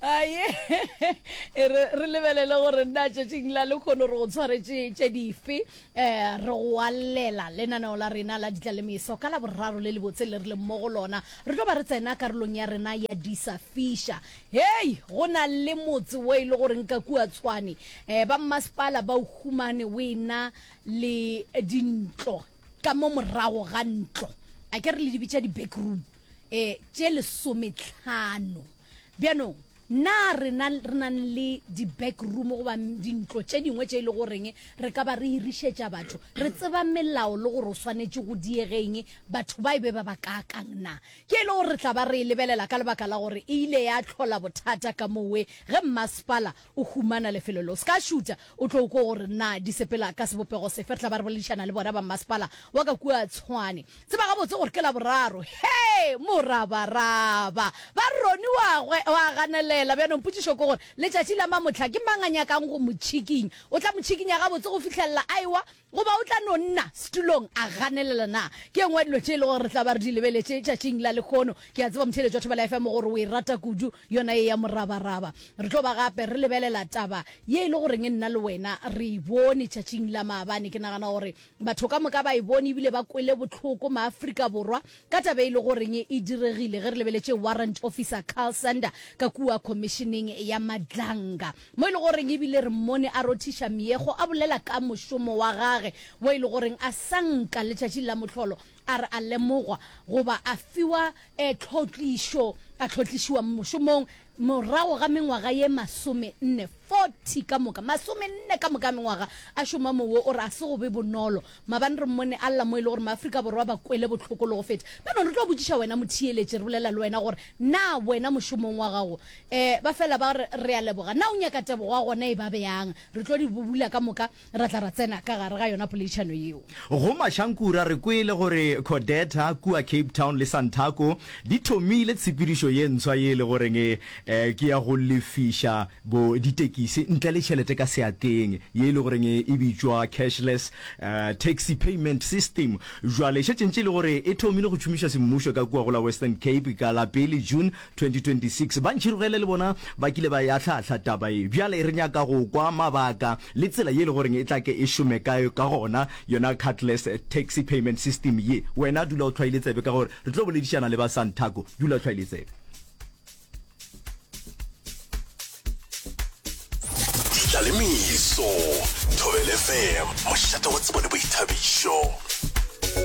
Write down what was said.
aye re re lebelele gore nna tšatšing la lekgono re go tshwaretše tše dife um re go alela lenaneo la rena la ditla le meso ka la boraro le lebotse le re leng mo go lona re tlo ba re tsena karolong ya rena ya disa fiša hei go na le motse wo e le gore nka kua tshwane um ba mmasepala ba o humane o ena le dintlo ka mo morago ga ntlo a ke re le dibitša di-backroom um tše lesometlhano Bjanong, na rena re nang le di-back room goba dintlo tše dingwe tše e le goreng re ka ba re hirišetša batho? Re tseba melao le gore o swanetše go diege eng, batho ba e be ba bakaakang? Na ke e le gore re tla ba re e lebelela ka lebaka la gore e ile ya hlola bothata ka mowe ge mmasepala O humana lefelo le o se ka šuta, o tlo kwa gore na di sepela ka sebopego sefe. Re tla ba re boledišana le bona ba mmasepala wa ka kua Tshwane. Tseba gabotse gore ke Laboraro. Hee! Morabaraba! Ba re Ronnie wa gwe o a ganelela. Bjanong potšišo ke gore letšatši la mamohla ke mang a nyakang go mo tšhikinya. O tla mo tšhikinya gabotse go fihlelela a ewa Goba o tla no nna setulong a ganelela? Na ke e nngwe ya dilo tše e lego gore re tla ba re di lebeletše tšatšing la lekhono. Ke a tseba motheeletši wa Thobela ya FM gore o e rata kudu yona ye ya morabaraba. Re tlo ba gape re lebelela taba ye e le goreng nna le wena re e bone tšatšing la maabane. Ke nagana gore batho ka moka ba e bone ebile ba kwele bohloko, Maafrika Borwa Ka taba e lego goreng e diregile ge re lebeletše Warrant Officer Carl Sander ka kua Khomišeneng ya Madlanga mo e lego goreng e bile re mmone a rothiša meekgo a bolela ka mošomo wa gage wo e lego goreng a sa nka letšatšing la mohlolo a re a lemogwa goba a fiwa tlhotlišo a tlhotlišiwa mošomong Morago ga mengwaga ye masomenne, 40 ka moka, masomenne ka moka a mengwaga a šoma moo, wo o re a se go be bonolo. Maabane re mmone a lla mo e le gore Maafrika Borwa ba kwele bohloko le go feta. Bjalo re tlo botšiša wena motheeletši, re bolela le wena gore na wena mošomong wa gago, um ba fela ba re, re a leboga, na o nyaka tebogo wa gona e ba bjang? Re tlo di bubula ka moka. Ra tla ra tsena ka gare ga yona poledišano yeo. Go Mašankura re kwele gore Codeta kua Cape Town le Santaco di thomile tshepedišo ye ntswa ye e le goreng e ke ya go lefiša bo ditekisi ntle le tšhelete ka seatleng ye e le goreng e bitšwa Cashless Taxi Payment System. Bjale e šetše ntše e le gore e thomile go tšhomišwa semmušo ka kua go la Western Cape ka la pele June 2026. Ba ntšhirogele le bona ba kile ba e ahla-ahla taba ye. Bjale re nyaka go kwa mabaka le tsela ye e le gore e tla ke e šome ka ka gona yona cardless taxi payment system ye. Wena dula o tlhwaile tsebe ka gore re tlo boledišana le ba Santaco. Dula o tlhwaile tsebe. Ditlaleimiso, Thobela FM, mošate wa tsebo le boithabišo.